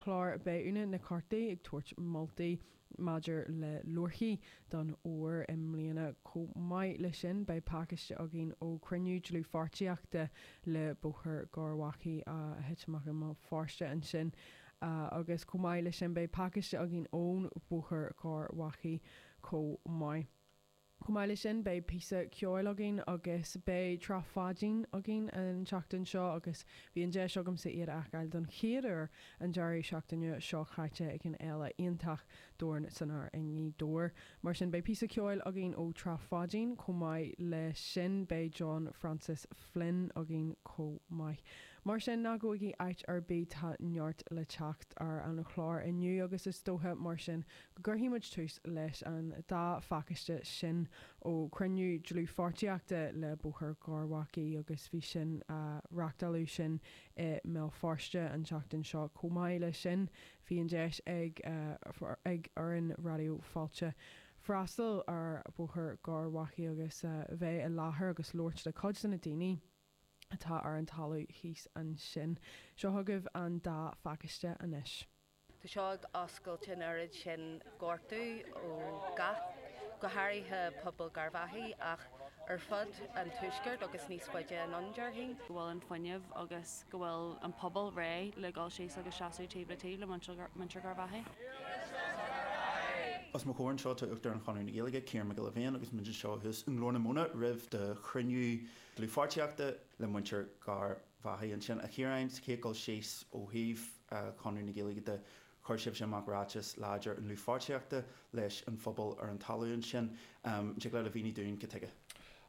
chlár Beidh na Comhaltaí ag tabhairt moltaí maidir le leabharthaí don Fhómhar i mbliana chomh maith le sin beidh pacáiste againn ó chruinniú dlúthpháirtíochta le Bóthar Gharbhachaidh a thit amach i mBéal Feirste ansin agus chomh maith le sin beidh pacáiste againn ón Bhóthar Gharbhachaidh chomh maith. Chomh maith le sin beidh píosa ceoil againn agus beidh Trá Pháidín againn an tseachtain seo agus bhí an deis agamsa iad a fheiceáil don chéad uair an deireadh seachtaine seo chaite ag an Fhéile iontach Dorn San Aer i nGaoth Dobhair. Mar sin beidh píosa ceoil againn ó Trá Pháidín. Chomh maith le sin beidh John Francis Flynn againn chomh maith. Mar sin ná gabhaigí áit ar bith tá neart le teacht ar an chlár inniu agus is dóiche mar sin gcuirfidh muid tús leis an dá phacáiste sin ó chruinniú dlúthpháirtíochta le Bóthar Gharbhachaidh agus reáchtáladh sin i mBéal Feirste an tseachtain seo chomh maith le sin bhí an deis ag ag fhoireann Raidió Fáilte freastal ar Bhóthar Gharbhachaidh agus bheith i láthair agus labhairt le cuid de na daoine atá ar an talamh thíos ansin. Seo chugaibh an dá phacáiste anois. Tá seo ag oscailt an oiread sin gortú ó gach, go háirithe pobal Garvaghy ach ar fud an tuaiscirt agus níos faide anonn, déarfainn. go bhfuil an fuinneamh agus go bhfuil an pobal réidh le dhul síos agus seasamh taobh le taobh le muintir Garvaghy. Os mo chomhair anseo tá Uachtarán Chonradh na Gaeilge, Ciarán Mac Giolla Bhéin agus muid anseo thuas i nGlór na Móna roimh do chruinniú dlúthpháirtíochta le muintir Garvaghy. Ansin a Chiaráin, sa chéad dhul síos ó thaobh, a Chonradh na Gaeilge de, chuir sibhse amach ráiteas láidir i ndlúthpháirtíochta leis an phobal ar an talamh ansin. An dtig leat a mhíniú dúinn cad tuige?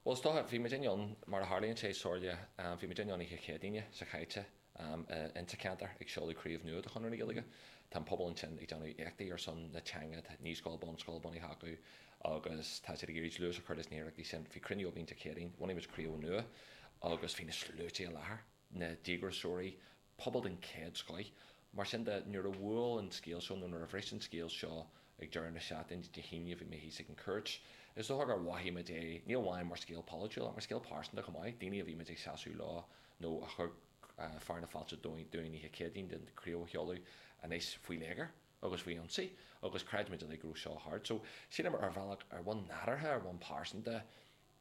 Bhuel, is dócha, bhí muid ann, mar a tharlaíonn sé, Somhairle, bhí muid ann oíche Chéadaoine seo chaite ins an cheantar ag seoladh craobh nua de Chonradh na Gaeilge. Tá an pobal ansin ag déanamh éachtaí ar son na teanga, tá naíscoil, bunscoil bunaithe acu agus tá siad ag iarraidh dlús a chur leis na hiarrachtaí sin. Bhí cruinniú againn Dé Céadaoin, bhunaigh muid craobh nua agus bhí na sluaite i láthair. na díograiseoirí, pobal den chéad scoith. Mar sin de, nuair a bhuail an scéal seo, nó nuair a bhris an scéal seo ag deireadh na seachtaine, Dé hAoine, bhí mé thíos ag an Chúirt. Is dócha gur mhothaigh muid é, ní amháin mar scéal polaitiúil, ach mar scéal pearsanta chomh maith, daoine a bhí muid ag seasamh leo, nó a chuir fearadh na fáilte dúinn oíche Chéadaoin don chraobh a sheoladh, anois faoi léigear, agus faoi ionsaí, agus chreid muid uilig go raibh seo thart. So, shíleamar, ar bhealach, ar bhonn nádúrtha, ar bhonn pearsanta,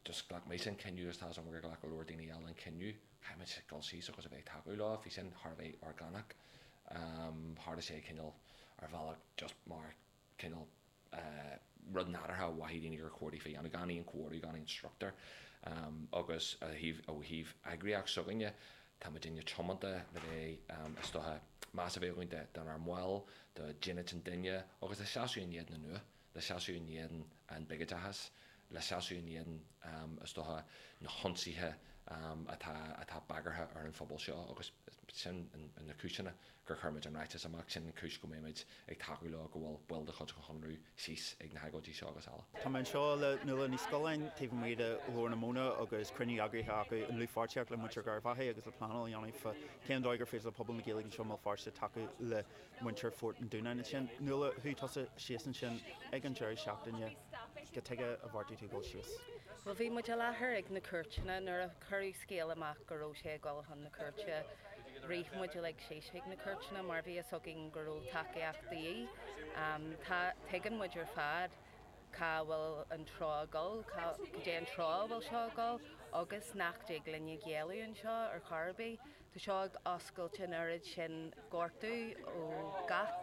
just ghlac mise an cinneadh agus tá súil agam gur ghlac go leor daoine eile an cinneadh, caithfimid dul síos agus a bheith ag tacú leo, bhí sin thar a bheith orgánach, em tharla sé cineál ar bhealach just mar cineál eh rud nádúrtha a mhothaigh daoine gur chóir daofa a dhéanamh, gan aon comhordú, gan aon struchtúr em agus ó thaobh, ó thaobh eagraíocht s'againne, tá muidinne tiomanta le bheith em is docha meas a bheith againn don ár mbaill, do dhínit an duine agus do sheasamh in éadan an fhuath. le seasamh in éadan an bhigideachais, le seasamh in éadan, is dócha, na hionsaithe atá bagartha ar an phobal seo agus sin na cúiseanna gur chuir muid an ráiteas amach, sin an chúis go mbeidh muid ag tacú leo, go bhfuil baill de chuid an Chonradh síos ag na hagóidí seo agus eile. Tá mé anseo le Nuala Ní Scolláin, taobh amuigh de Ghlór na Móna agus cruinniú eagraithe acu i ndlúthpháirtíocht le Muintir Garvaghy agus le pleanáil a dhéanamh fá cén dóigh gur féidir le pobal na Gaeilge anseo i mBéal Feirste tacú le muintir Phort an Dúnáin ansin. Nuala, chuaigh tusa síos ansin ag an deireadh seachtaine cad chuige a bheartaigh tú dul síos? Bhuel, bhí muid i láthair ag na cúirteanna. Nuair a cuireadh scéala amach go raibh sé ag dul chun na cúirte, rith muid uilig síos chuig na cúirteanna mar bhí a fhios againn go raibh tacaíocht de dhíth. Tá, tuigeann muid ar fad cá bhfuil an treo ag dul, cá, cad é an treo a bhfuil seo ag dul agus nach dtig linne géilleadh anseo ar chor ar bith. Tá seo ag oscailt an oiread sin gortú ó gach,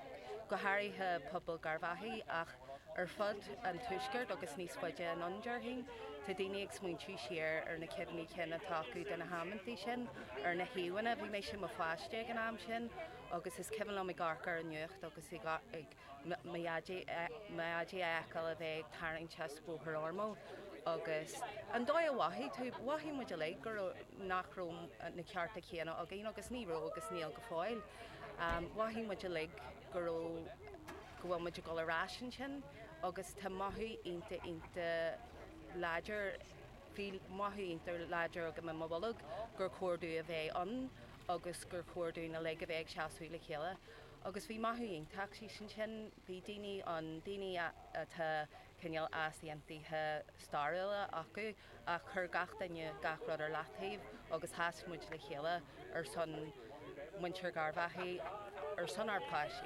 go háirithe pobal Garvaghy ach ar fud an tuaiscirt agus níos faide anonn, déarfainn. Tá daoine ag smaointiú siar ar na cuimhní cinn atá acu de na hamanntaí sin ar na híomhánna. Bhí mise i mo pháiste ag an am sin agus is cuimhin liom ag amharc ar an nuacht agus ag mo dhaidí a fheiceáil á tharraingt as Bóthar Ormeau agus an dóigh a mhothaigh tú, mhothaigh muid uilig, go raibh, nach raibh na cearta céanna againn agus ní raibh agus níl go fóill. Mhothaigh muid uilig go raibh, go bhfuil muid ag dul ar ais ansin agus tá mothú iontach, iontach láidir, bhí mothú iontach láidir agam i mo bholg gur chóir dúinn a bheith ann agus gur chóir dúinn uilig a bheith ag seasamh le chéile. Agus bhí mothú iontach thíos ansin, bhí daoine ann, daoine atá cineál easaontaithe stairiúla acu, ach chuir gach duine gach rud ar leataobh agus sheas muid le chéile ar son muintir Garvaghy, ar son ár bpáistí.